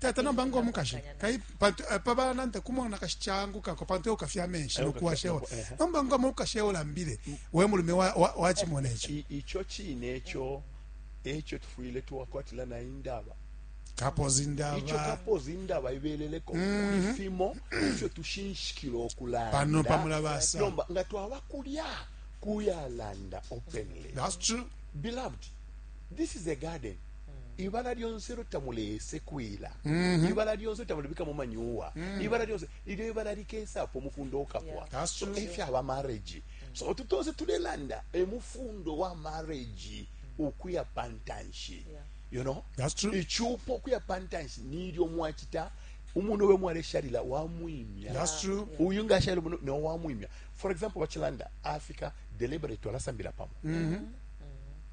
tata nomba ngo mukashi eh, pabananta kumona kashi changukako pantu eukafya amenshi nokuwashewa eh. nomba ngo mukashi eulambile we mulume wachimona echo icho chine echo echo tufuyile tuwakwatila na indaba kapoza indaba icho kapoza indaba ibeleleko mhm. ifimo ifyo tushinshikila okulanda pano pamulabasa nomba nga twaba kulya kuyalanda openly that's true beloved this is a garden mm. ibala lyonse ilo tamulesekwila mm -hmm. ibala lyonse tamulibikamo manyuwa mm. ibala lyonse ilyo ibala likesapo umufundo ukapwa yeah. so efyaba marriage mm. so otu tonse tulelanda emufundo wa marriage mm. ukuya pantanshi yeah. you know That's true. ichupo kuya pantanshi nilyo mwachita umuntu we mwaresharira wamwimya That's true. uyu ngasharira umuntu no wamwimya for example bachilanda africa deliberate walasambira pamo mm -hmm.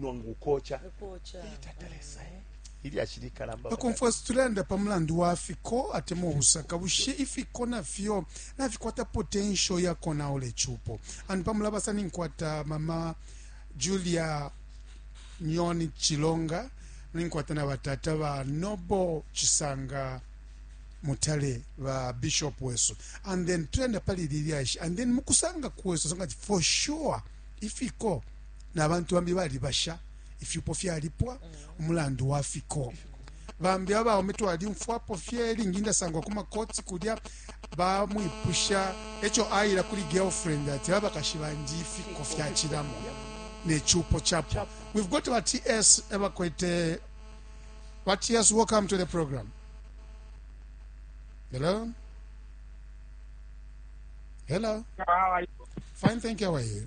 nonga ukoca itatalesa eh, ilyashi likalamba bakomfwesi tulenda pa mulandu wa fiko atema obusaka bushe ifiko nafyo nafikwata potential ya konaula ecupo and pamulabasa ninkwata mama julia nyoni chilonga ninkwata na batata ba nobo chisanga mutale ba bishop wesu and then tulenda pali lilyashi and then mukusanga kwesu sanga for sure ifiko na bantu bambi balibasha ifyupo fyalipwa umulandu wa fiko bambi abaume twalyumfwapo fye lingi ndasangwa ku makoti kulya bamwipusha ekyo ayira kuri girlfriend ati abakashi bandi ifiko fyakiramo nekyupo kyapwa we've got our ts ebakwete our ts welcome to the program hello hello fine thank you how are you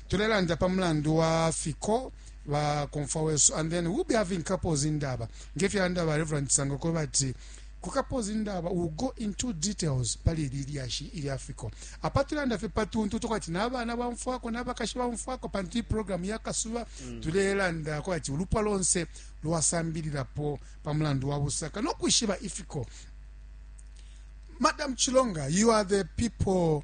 tulelanda pa mulandu wa fiko ba komfwa wesu and then we'll be having couples indaba ngefyalanda ba reverend sanga ko bati kukapoza indaba will go into details pali ili lyashi ili afiko apa tulanda fye patuntu tukwati n'abana bamfwako n'abakashi bamfwako pantu iyi programu yakasuba mm. tulelanda kwati ulupwa lonse lwasambililapo pa mulandu wa busaka no kwishiba ifiko madam chilonga you are the people